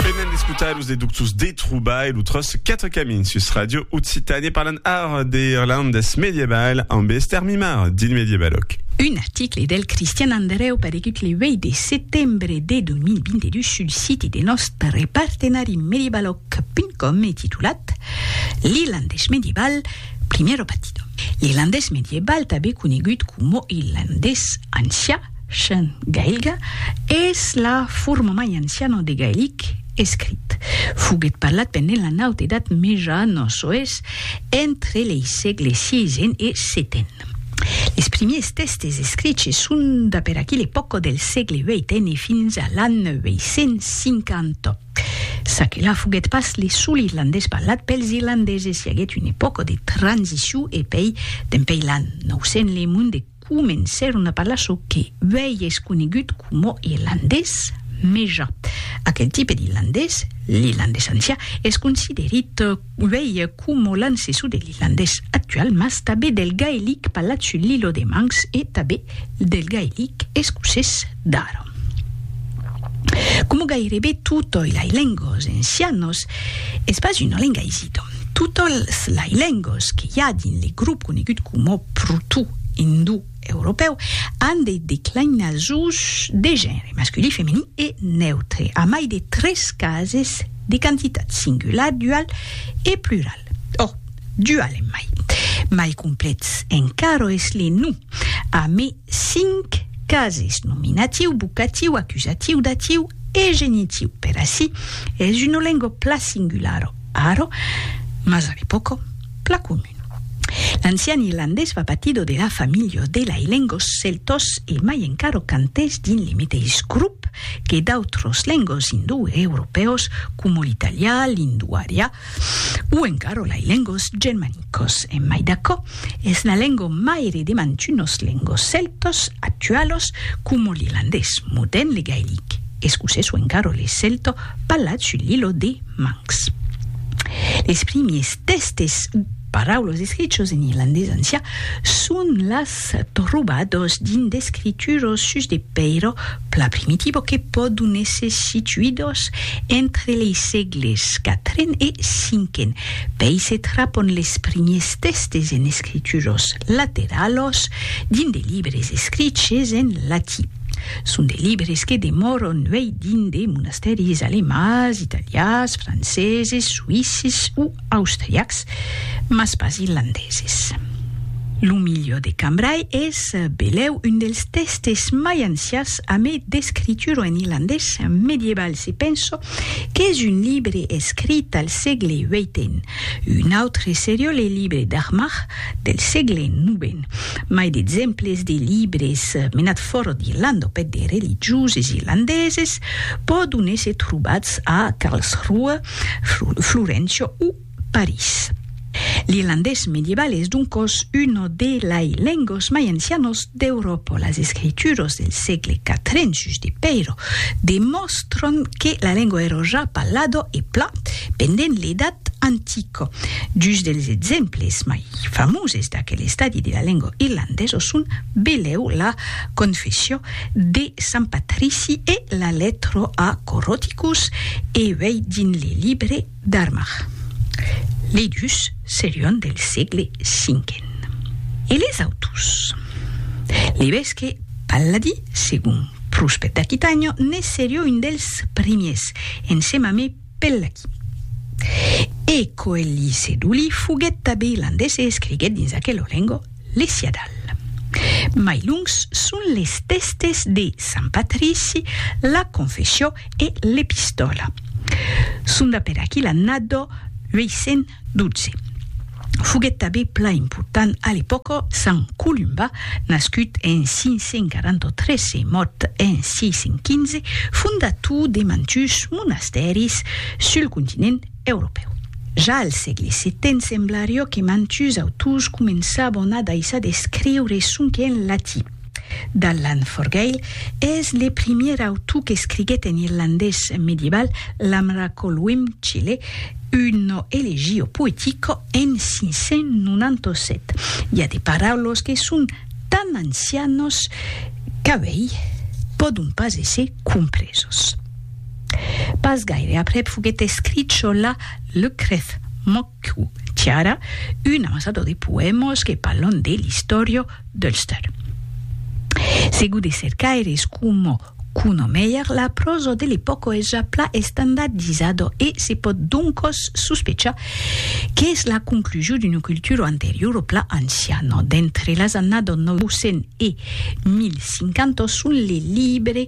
Venen d'escotar los deductos de trobar e lo tros 4 camins sus Radio Occitània parlant ara de irlandés medieval amb Esther Mimar dins Medievaloc. Un article del Cristian Andrèu paregut le 8 de setembre de 2022 sul siti de nòstre partenari medievaloc.com e titulat L'irlandés medieval, primero battido. L'irlandés medieval, tanben conegut coma irlandés ancià, Chen, gailga, es la forma mai anciana de gailic escrit. Foguèt parlat pendent la Naut Edat Meja no soes entre lei sègle siisen e seten. Les primiers tèstes escriches son de per aqui l'epòca del sègle vieten e fins a l'an 950. Çaquelà foguèt pas le sol irlandés parlat pels irlandeses, i aguèt una epòca de transicion e pei, dempei l'an 900, le monde comencèron a parlar çò que uèi es conegut coma irlandés meja. Aquel tipe d'irlandés, l'irlandés ancià, es considerit uèi coma l'ancessor de l'irlandés actual mas tanben del gaelic parlat sul Lillo de Manx e tanben del gaelic escocés d'ara. Como gairebe tutoi lai lengos encianos, es pas una lenga isito. Tutols lai lengos que i a dins le grop conegut como proto-indou-europeu an de declinasons de genre, masculí, feminì e neutre, a mai de tres cases de quantitat, singular, dual e plural. Ò, dual en mai. Mai complets encaro es le nou, a mai 5 cases, nominatiu, vocatiu, acusatiu, datiu e genitiu. Per ací es una lengo pla singularo, aro, mas a l'epòco pla comun. L'ancian irlandés va patido de la familha de lai lengos celtos e mai encaro quand es dins li meteis grop que d'autros lengos indoeuropèus coma l'italià, l'indoarià, O encara lai lengos germanicos, en mai d'aquò, es la lengo maire de mantunos lengos celtos actualos coma l'irlandés, modern le gaelic, escocés o encara le celto parlat sul lilo de Manx. Les primiers tèstes o paraulos escrichos en irlandés ancian son las trobados dins d'escrituros sus de pèiro Pla primitivo que pòdon èsser situidos entre lei sègles quatren e cinquen, pei se trapon les primiers tèstes en escrituros lateralos dins de libres escriches en latí. Son de libres que demòron uei dins de monastèris alemands, italians, franceses, suïsses o austriacs, mas pas irlandeses. Lo milieu de Cambrai es belèu un dels tèxtes mai ancians a mai d'escritura en irlandés medieval se penso qu'es un libre escrit al sègle vièiten. Un autre serió le libre d'Armagh del sègle novèn. Mai d'exemples de libres menats fòra d'Irlanda au pet de religioses irlandeses pòdon èsser trobats a Karlsruhe, Florencio o París. L'irlandés medieval es doncos uno de lai lengos mai ancianos d'Euròpa. Las escrituras del sègle quatren sus de Peiro demòstran que la lengua èra ja parlada e plan pendent l'Edat Antica. Dus dels exemples mai famoses d'aquel estadi de la lengua irlandesa son, belèu, la Confession de Sant Patrici e la letro a Coroticus e uei dins le libre d'Armagh. Lei dus serion del sègle cinquen. E les autos? L'evesque Palladi, segon Pruspet d'Aquitànho, ne serió un dels primiers, ensema me Pellachi. E Coelhi Seduli foguèt tabé landés e escriguèt dins aquelo lengo, L'Esiadal. Mai longs son les tèstes de Sant Patrici, la Confessió e l'Epistòla. Son d'aper aquí l'annada 812. Foguèt tanben plan important a l'epòca Sant Columba, nascut en 543 e mòrt en 615, fondator de mantuns monastèris sul continent Europèu. Ja al sègle setent semblarió que mantuns autors començabon a daissar d'escriure sonque en latin. D'Allan Forgaill es le primièr autor qu'escriguèt en irlandés medieval l'Amracolwym Chile, uno elegio poetico en 597. I a de paraulos que son tan ancianos qu'avei pòdon pas èsser compresos. Pas gaire aprèp foguèt escrit çò la Lecrèth Moccu Tiara, un amasador de poèmos que parlon de l'istòria d'Ulster. Segur de cercaires coma Kuno Meyer, la pròsa de l'epòca es ja plan estandardizada e se pòt doncas sospechar qu'es la conclusion d'una cultura anteriora plan anciana. D'entre las annadas 900 e 1050 son les libres,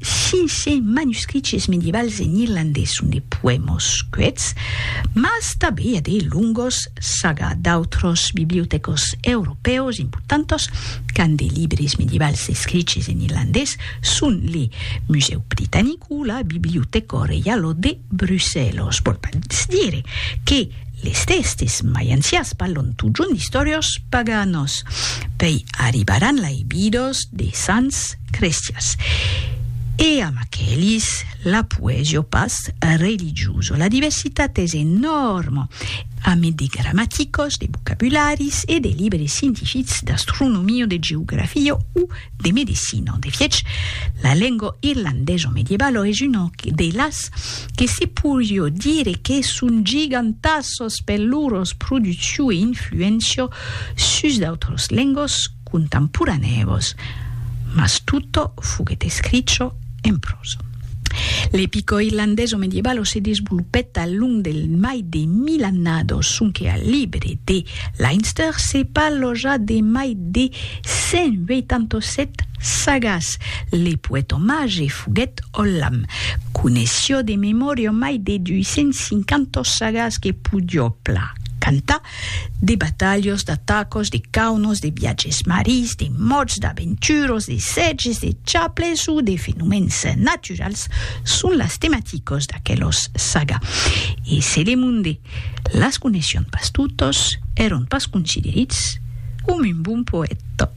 Sise manuscriches medievals en irlandés son de poèmos cuets, mas tanben i a de longos saga d'autros bibliotecos europèus importantos qu'an de libres medievals escriches en irlandés son le Musèu Britanic o la Biblioteco Reialo de Brussèlos. Vòl pas dire que les tèxtes mai ancians parlon totjorn d'istòrios paganos. Pei arribar anlaibidos de sants, crestias. E amb aquelis la poesio pas religioso. La diversitat es enòrma, a mai de gramaticos, de vocabularis e de libres scientifics d'astronomia, de geografia o de medecina. De fiech, la lenga irlandeso medievalo es una de las que se poirió dire que son gigantassos per lor produccion e influéncia sus d'autras lengas, contemporanèus, mas tutto foguèt escricho en prosa. L'epico irlandeso medievalo se desvolopèt al long del mai de mil annados, sonque al libre de Leinster se parlò ja de mai de 187 sagas. Le poèt omage foguèt Ollam, coneissió de memòria mai de 250 sagas que podió plan cantar De batalhos, d'atacos, de caunos, de viatges marins, de mòrts, d'aventuros, de sètges, de chaples o de fenomèns naturals son las tematicos d'aquelos saga. E se le monde las coneisson pas totos, èron pas considerits com un bon poèta.